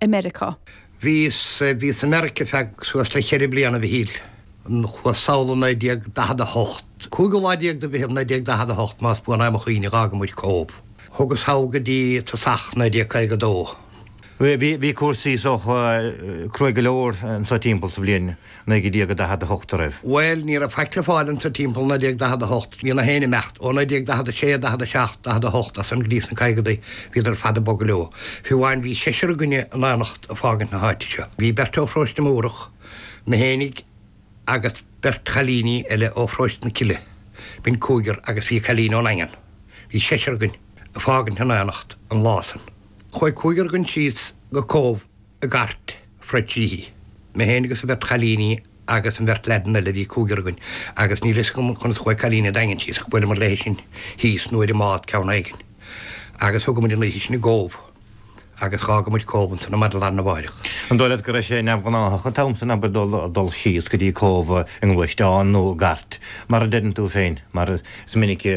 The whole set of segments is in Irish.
i Meiriceá. Bhíos i Meiriceá feadh suas le cheithre bliana de shaol, chuas amach 1948. Cúigeadh lá déag de Mheitheamh 1948, más buan mo chuimhne, d'fhágamair Cóbh. Thugas thall go dtí tosach 1952. Bhí cúrsaí saghas cruaidh go leor anso timpeall sa bhliain 1948 an raibh. Bhuel, ní raibh faic le fáil anseo timpeall 1948. Bhí éinne ag imeacht. Ó 1946, 47, 48 as san go dtí sna caogaidí, bhíodar ar fad ag bogadh leo. Fiú amháin bhí seisear againn in éineacht ag fágaint na háite seo. Bhí beirt ó Pharóiste Múrach, mé fhéinig agus beirt chailíní eile ó Pharóiste na Cille, b'in cúigear agus bhí cailín ón Daingean. Bhí seisear againn ag fágaint in éineacht an lá san. Chuaigh cúigear againn síos go Cóbh. i gcairt phríobháideach, mé féin agus an bheirt chailíní agus an bheirt leaideanna eile bhí cúigear againn agus níl a fhios agam conas chuaigh cailín an Daingin síos ach buaileamar léi sin thíos nó ar an mbád ceann éigin agus thugamair an oíche sin i gCóbh agus d'fhágamair Cóbh ansan ar maidin lá arna mháireach. An dóigh leat go raibh sé neamhghnáthach an t-am san abair dul dul síos go dtí Cóbh i ngluaisteán nó i gcairt mar a deireann tú féin mar is minicí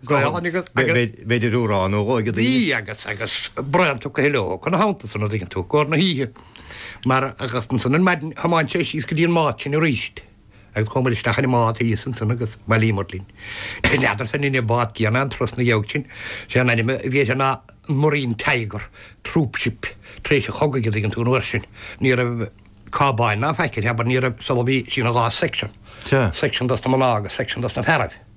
Go h-an agus agus. Bhí deoch nó dhó aige agus agus braon tugtha leo chun a thomhaltas san an dtuigeann tú, go na hoíche mar agus ansan ar maidin thiomáin sé síos go dtí an mbád sin arís agus chuamair isteach sa mbád thíos ansan agus bhailíomair linn Is n'fheadar san ab in é an bád céanna an trus na gheabhadh sin, sé an ainm a bhí air ná an Marine Tiger, troop ship, tar éis an chogaidh an dtuigeann tú nó air sin ní raibh cábáin ná faic air abair ní raibh sé a bhí sí ina dhá section, Sea. section dos na mná agus section dos na fearaibh.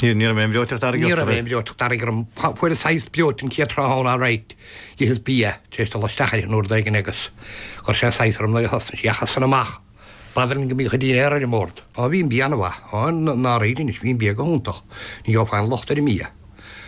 Ní raibh aon bhreoiteacht fharraige ort. Ní raibh aon bhreoiteacht fharraige orm. Fuaireas saghas breoite an chéad tráthnóna alright. D'itheas bia. Tar éis dul isteach uirthi an uair éigin agus chuir sé saghas orm nuair a thosnaigh sí ach as san amach. B'fhada linn go mbíodh an dinnéar ar an mbord. Á bhí an bia ana mhaith. Á dáiríre anois, bhí an bia go hiontach. Ní raibh aon locht ar an mbia.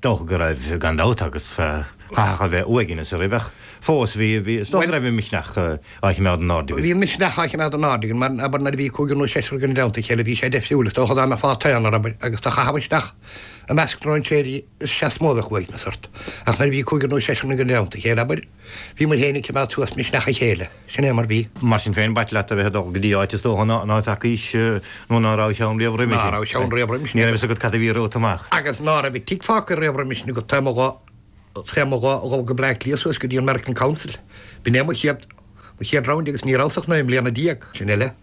dócha go raibh, gan dabht, agus chaithfeadh a bheith uaigneas oraibh, ach fós bhí, is dócha go raibh an misneach á chimeád in airde aige. Bhí an misneach á chimeád in airde aige, abair nuair a bhí cúigear nó seisear againn i dteannta a chéile, bhí sé deifriúil, is dócha dá mbeifeá i t'aonar, abair, agus tú a chaitheamh isteach i measc stróinséirí, is ea is mó a bheadh uaigneas ort, ach nuair a bhí cúigear nó seisear againn i dteannta a chéile, abair, Bhí muid féin ag coimeád suas misneach a chéile, sin é mar bhí. Mar sin féin, b'ait leat a bheith ag dul go dtí áit is dócha ná feacaís nó ná rabhais ann riamh roimis. Ná rabhais ann riamh roimis. Ní raibh fhios agat cad a bhí romhat amach. Agus ná raibh an tigh fágtha riamh roimis nó gur tháinig an t-am domh, an t-am domh a dhul go Bleá Cliath suas go dtí an American Council. B'in é mo chéad, mo chéad round agus ní rabhas ach naoi mbliana déag, sin é le.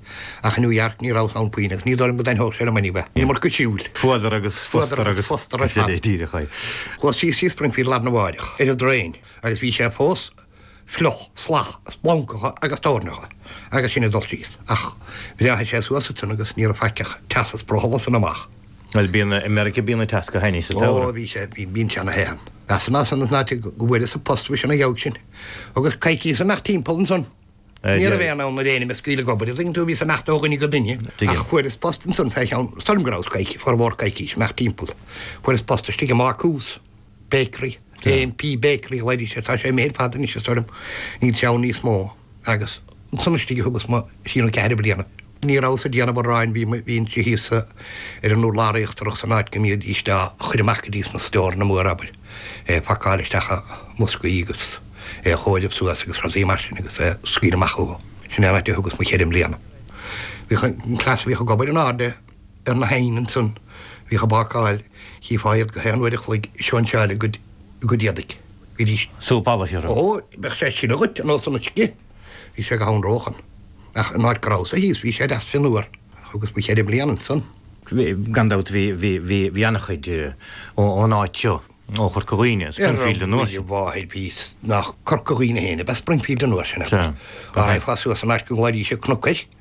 Ach i New York ní rabhas ann puinn agus ní dóigh liom go dtaitneodh sé liom in aon chor. Nílim ort go siúil. Fuadar agus fústar agus fústar ar fad. Díreach é. Chuas síos thrí Springfield larna mháireach, ar an dtraein, agus bhí sé fós fliuch, salach, splancacha agus toirneacha agus sinn ag dul síos. Ach bhreáthaigh sé suas ansan agus ní raibh faic ach teas is brothall as san amach. Bhuel, bíonn, i Meiriceá bíonn an teas go hainnis sa tsamhradh. Ó, bhí sé, bíonn sé ana the ann. Mheasas ansan is ná teigh go bhfuaireas an post faoi sin a gheabhadh sin. Agus coicíos ag imeacht timpeall ansan. Ní raibh aon fhonn ar éinne mé a scaoileadh ag obair, an dtuigeann tú, bhíos ag imeacht ó dhuine go duine ach fuaireas post ansan fé cheann, is dóigh liom go rabhas coicís, formhór coicís, ag imeacht timpeall. Fuaireas post istigh i mbácús, bakery, JMP Bakery a ghlaoidís air, tá sé imithe ar fad anois is dóigh liom, níl sé ann níos mó agus ansan istigh a thugas mo thrí nó ceathair bliana. Ní rabhas-sa ag déanamh aráin, bhínnse thíos ar an urlár íochtarach san áit go mbídís á chur amach go dtí sna stóranna móra abair, é phacáil isteach i mboscaí agus é a chomhaireamh suas agus cúrsaí mar sin agus é a scaoileadh amach chucu. Sin é an áit a thugas mo cheithre mbliana. Bhíodh an cleas a bhíodh ag obair in airde ar na hoighinn ansan a bhíodh ag bácáil, chífeá iad gach aon uair a chloig ag sóinseáil a gcuid éadaigh. Bhídís. Súp alla thirim. Ó, beidh sé sin agat, a Nósa na scith! Bhí sé go han róthe ann. Ach an áit go rabhas-sa thíos bhí sé deas fionnuar. Thugas mo cheithre bliana ansan. Gan dabht bhí ana-chuid ón áit seo, ó Chorca Dhuibhne, i Springfield an uair sin. Ar ndóigh a mháthair bhí, nach Corca Dhuibhne féin ab ea Springfield an uair sin agus dá raghfá suas an áit go nglaoidís an Cnoc Coill,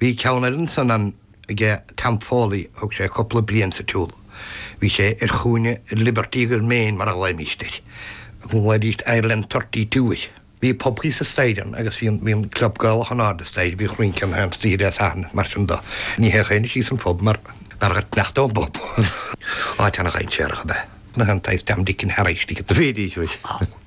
Bhí ceann eile ansan ann aige Tom Foley thug sé cúpla bliain sa tsiúl. Bhí sé ar chúinne Liberty agus Main mar a ghlaoimíst air. Ghlaoidíst Ireland Thirty Two air. Bhí pub thíos an staighre ann agus bhí an bhí an club Gaelach in airde an staighre bhí rince in airde an staighre Dé Sathairn is mar sin do. Ní théadh éinne síos an phub mar mar gur cneasta an pub. Áit ana dhainséarach ab ea é, gach aon Tom Dick and Harry istigh. Bhídís mhuis.